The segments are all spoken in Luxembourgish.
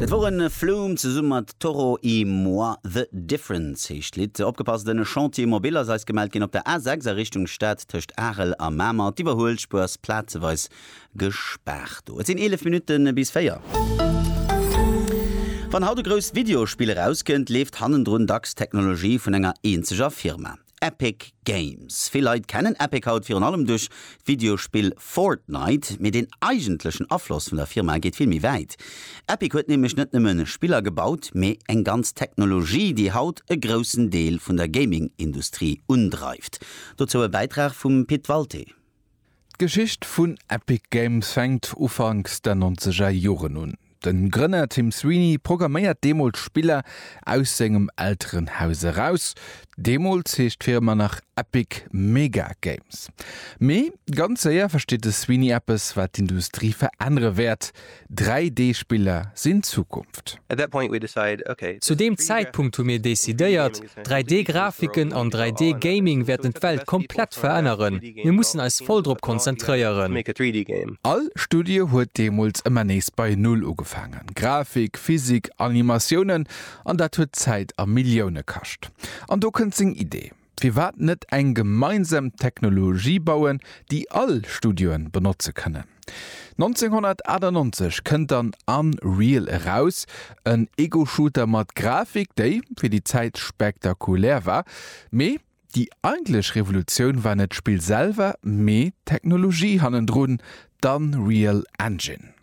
Dat woren Flume zesumme mat Toro y Moi, The Difference heescht d'Lidd. Opgepasst, en Chantier mobile ass eis gemellt ginn op der A6 a Richtung Stad tëscht Arel a Mamer. D'Iwwerhuelspuer ass plazeweis gespaart do. Et sinn 11 Minutte bis 4. Wann haut e grousst Videospill erauskënnt, leeft hannendrun dacks d'Technologie vun enger eenzeger Firma. Epic Games. Vill Leit kennen Epic haut virun allem duerch d'Videospill Fortnite, mee den eigentlechen Afloss vun der Firma geet vill méi wäit. Epic huet nämlech net nëmmen Spiller gebaut, mee eng ganz Technologie, déi haut e groussen Deel vun der Gaming-Industrie undreift. Dozou e Bäitrag vum Pit Walté. D'Geschicht vun Epic Games fänkt ufanks der nonzeger Joren un. Den Grënner Tim Sweeney programméiert deemools Spiller aus sengem Elterenhaus eraus. Deemools heescht d'Firma nach Epic Mega Games. Mee ganz séier versteet de Sweeney eppes wat d'Industrie verännere wäert, 3D-Spiller sinn d'Zukunft. Zu deem Zäitpunkt hu mir decidéiert, 3D-Grafiken an 3D-Gaming wäerten d'Welt komplett veränneren. Mir mussen eis voll drop konzentréieren. All Studie huet deemools ëmmer nees bei Null ugefaangen, Grafik, Physik, Animatiounen, an dat huet Zäit a Millioune kascht. An do kënnt seng Idee. Firwat net eng gemeinsam Technologie bauen, déi all Studioe benotze kënnen? 1998 kënnt dann Unreal eraus, en Ego-Shooter mat Grafik, déi fir déi Zäit spektakulär war. Mee déi eigentlech Revolutioun war net d'Spill selwer, mee d'Technologie hannendrun, D'Unreal Engine.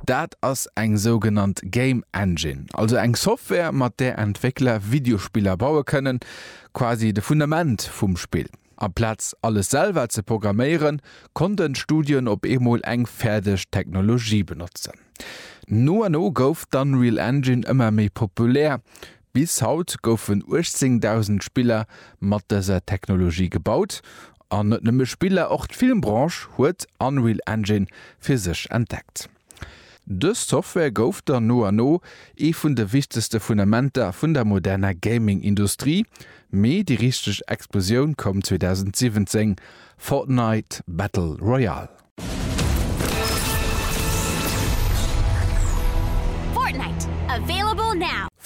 Dat ass eng sougenannt Game Engine, also eng Software mat där Entwéckler Videospiller baue kënnen, quasi de Fundament vum Spill. Amplaz alles selwer ze programméieren, konnten d'Studioen op eemol eng fäerdeg Technologie benotzen. No an no gouf d'Unreal Engine ëmmer méi populär, Bis haut goufen 18.000 Spiller mat dëser Technologie gebaut. An net nëmme Spiller, och d'Filmbranche huet Unreal Engine fir sech entdeckt. Dës Software gouf dann no an no ee vun de wichtegste Fundamenter vun der moderner Gaming-Industrie. Mee déi richteg Explosioun koum 2017, Fortnite Battle Royale.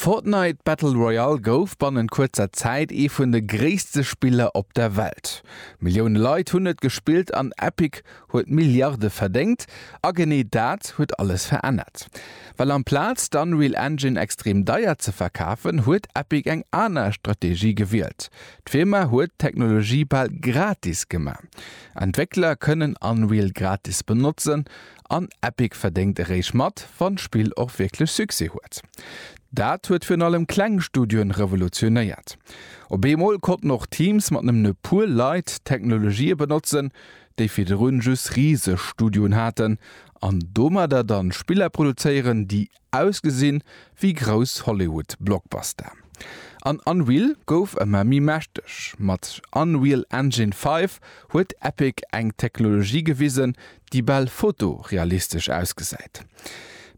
Fortnite Battle Royale gouf bannent kuerzer Zäit ee vun de gréisste Spiller op der Welt. Millioune Leit hunn et gespillt an Epic huet Milliarde verdéngt. A genee dat huet alles verännert. Well amplaz d'Unreal Engine extrem deier ze verkafen, huet Epic eng aner Strategie gewielt. D'Firma huet d'Technologie bal gratis gemaach. Entwéckler kënnen Unreal gratis benotzen an Epic verdéngt eréischt mat, wann d'Spill och wierklech Succès huet. Dat huet virun allem kleng Studioen revolutionéiert. Op eemol konnten och Teams mat nëmmen e puer Leit Technologië benotzen, déi virdrun just riseg Studioen haten an domadder dann Spiller produzéieren, déi Ausgesinn wéi grouss Hollywood Blockbuster. An Unreal gouf ëmmer méi mächteg. Mat Unreal Engine 5 huet Epic eng Technologie gewisen, déi bal fotorealistesch ausgesäit.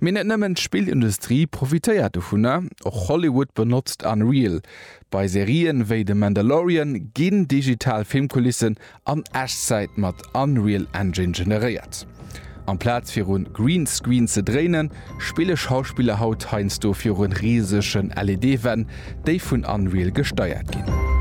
Mee net nëmmen d'Spillindustrie profitéiert dovunner, och Hollywood benotzt Unreal, Bei Serien wéi The Mandalorian ginn digital Filmkulissen an Echtzäit mat Unreal Engine generéiert. Amplaz viru Greenscreen ze dréinen, spille Schauspiller haut heiansdo viru risegen LED-Wänn, déi vun Unreal gesteiert ginn.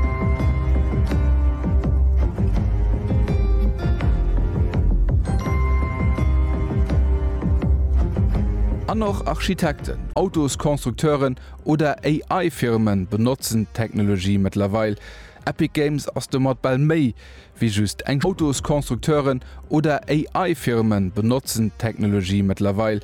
An och Architekten, Autoskonstrukteuren oder AI-Firmen benotzen d'Technologie mëttlerweil. Epic Games ass domat bal méi wéi just eng. Autosconstructeuren oder AI-Firmen benotzen d'Technologie mëttlerweil.